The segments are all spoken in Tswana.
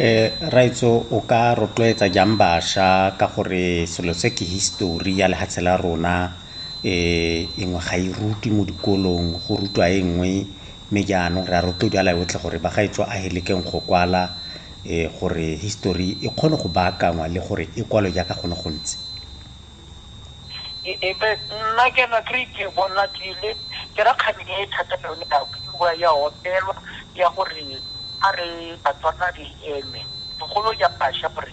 Eh, raitso o ka rotloetsa jang basha ka gore selo se ke histori ya lehatshe la rona eh engwe ga e rutwe mo dikolong go rutwa e nngwe Mme jaanong re a rotloediala yotlhe gore bagaetsho a e lekeng go kwala gore history e kgone go baakangwa le gore e kwalwe jaaka go ne go ntse. Ebe nna ke na kry ke bona ke le ke rakgadi e thata yone ya bua ya opelwa ya gore a re Batswana re eme bogolo ya basha gore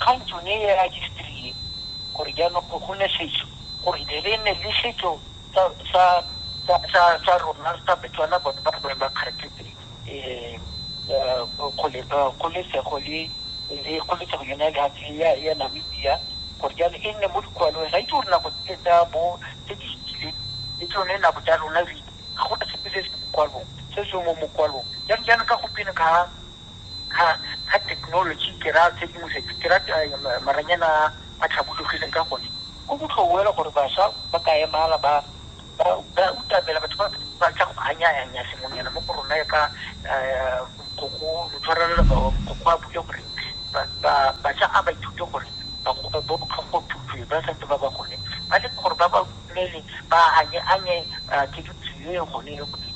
Kgang tsone e a history e, gore jaanong go gone setso, gore there be ne le setso sa sa sa sa sa rona sa Betswana bone ba bone ba kgaraketse kgole kgololesego le le kgololesego yone ya lehatshe ya ya Namibia, gore jaanong e nne mo dikwalong. Ga itse gore nako tse tsa bo tse di fitileng le tsone nako tsa rona re ga gona sepe se se mo kwalong se se mo mokwalong jaanong jaana ka gompieno ga. Ga ga thekenoloji ke raya tshedimosetso, ke raya maranyane a a tlhabologileng ka gone go botlhou fela gore basha ba ka emala ba ba ba utamela batho ba ba tla go anyanya sengwenyana mo go rona ka go tshwarelela go a bule gore ba ba basha a ba ithute gore ba go ba botlhoko thuto ba santse ba ba gone ba le gore ba ba mmele ba anye-anye ke ditseleng gone le gone.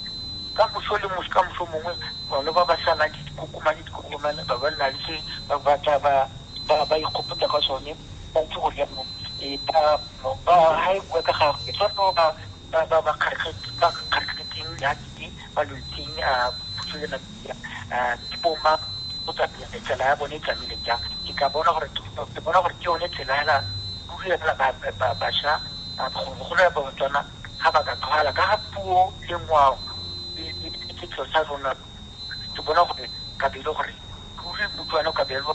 Ka moso le moso, ka moso mongwe bone ba ba salang ke dikokomane, dikokomane ba ba nna le se ba batla ba ikgopotsa ka sone, ba itse gore jaanong ba ha e bua ka gagwe, ke sone ba kgarakgetseng ya teng. balwetsing puso ya Namibia ke bo mang go tsamaya tsela ya bone e tsamaile jang ke ka bona gore ke bona gore ke yone tsela hela ruri ya ba basha golo ya batswana ga ba ka tlhoala ka ga puo le ngwao le setso sa rona ke bona gore kabelo gore ruri motswana kabelo